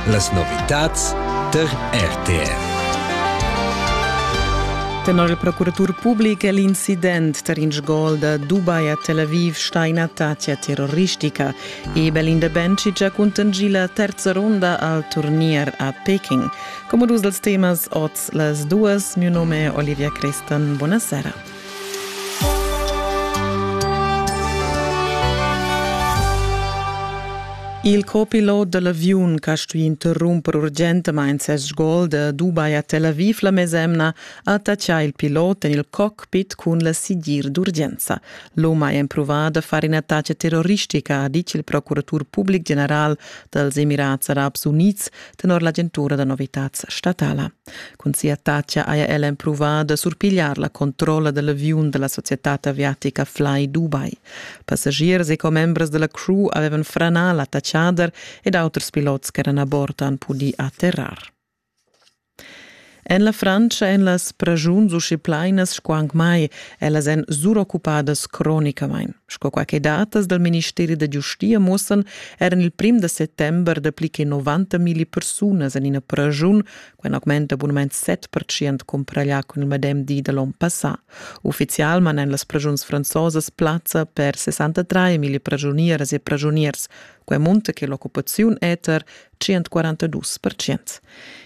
Las novitads tar RTR. Tenor il procuratur public è l'incident tar in sgol da Dubai a Tel Aviv stà ina tattia terroristica. Ebel Indebencic ha cuntanschì la terza ronda al turnier a Peking. Come dus dals temas oz las duas. Mio nome è Olivia Crestan. Buonasera. Il copilot dell'aviun che ha stuì interrumper urgentamain ses sgol da Dubai a Tel Aviv la mesemna ha attaccà il pilot en il cockpit cun la sigir d'urgenza. L'UM ha empruvà da far in'attacca terroristica, ha ditg il procuratur public general dals Emirats Arabs Unids tenor l'agentura da novitads statala. Cun sia tacha haja ella empruvà da surpigliar la controlla da l'aviun da la societad aviatica Fly Dubai. Passagiers e commembers da la crew avevan franà la tachader ed auters pilots ch'eran a bord han pudì atterrar. En la Frantscha èn las pragiuns usche plainas sco anc mai Ellas èn suroccupadas cronicamain, sco quai che datas dal ministeri da giustia mussan er en il prim da settember dapli che 90 milli persunas en ina praschun, quai augmenta bunament 7% cumpraglià cun il medem di da l'onn passà. Uffizialman èn las praschuns franzosas plazza per 63 milli praschunieras e praschuniers, quai munta che l'occupaziun eter 142 percent.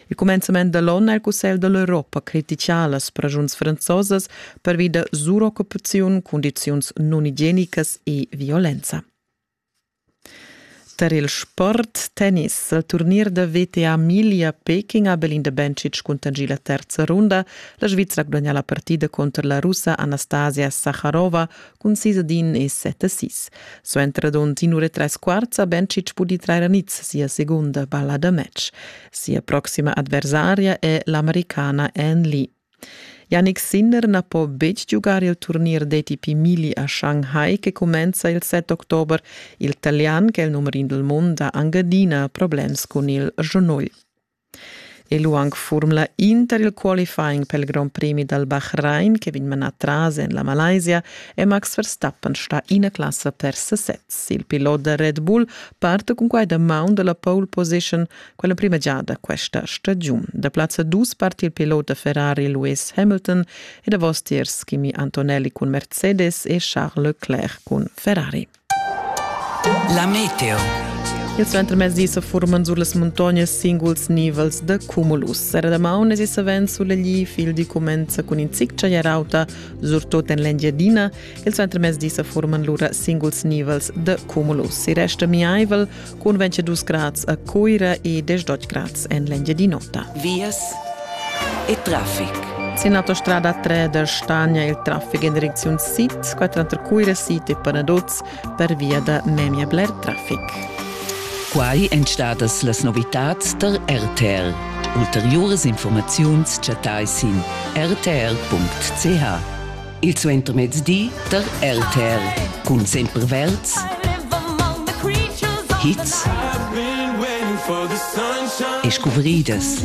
Il cumenzament da l'onn è il Cussegl da l'Europa critica las pragiuns franzosas pervi da suroccupaziun, cundiziuns nunigienicas e violenza. Tar il sport tennis al turnier da VTA Milia Peking ha Belinda Bencic cuntangì la terza runda. La Svizra ha gudagnà la partida cunter la russa Anastasia Sakharova cun sis ad in e set a sis. Suenter dond inure tres quarts ha Bencic pudì trair a niz sia segunda balla da match. Sia proxima adversaria è l'americana Anne Lee. Yannick Sinner na po betg giugar il turnier d'ATP Mili a Shanghai che cumenza il 7 october. Il Italian, che è il numer in del mondo, ha anche adina problems con il Genol. E lu aunc furmla Inter il qualifying pel Grand Premi dal Bahrain che vegn manà tras en la Malaysia è Max Verstappen stà ina classa per sesez. Il pilot da Red Bull parte cun quai da maun da la pole position quella prima giada questa stagiun. Da plazza dus parti il pilot da Ferrari Lewis Hamilton e davostiers Kimi Antonelli cun Mercedes e Charles Leclerc cun Ferrari. La meteo. Il suentermezdi sa furman sur las muntognas singuls nivels da cumulus. Era damaun es savens sulegli, fil di comenza cun in zic chagliarauta, surtot en l'Engiadina. Il suentermezdi sa furman lura singuls nivels da cumulus. I resta miaivel cun 22 grads a Cuira e 18 grads en l'Engiadin'Ota. Vias e traffic. Sin l'autostrada 3 da Stagna il traffic en direcziun sid, quattro tra Cuira Sid e Panaduz per via da memia bler traffic. Quai èn stadas las novitads tar RTR. Ulteriuras informaziuns chattai sin rtr.ch. Il suentermezdi der RTL cun sempre verds hits e scuvridas.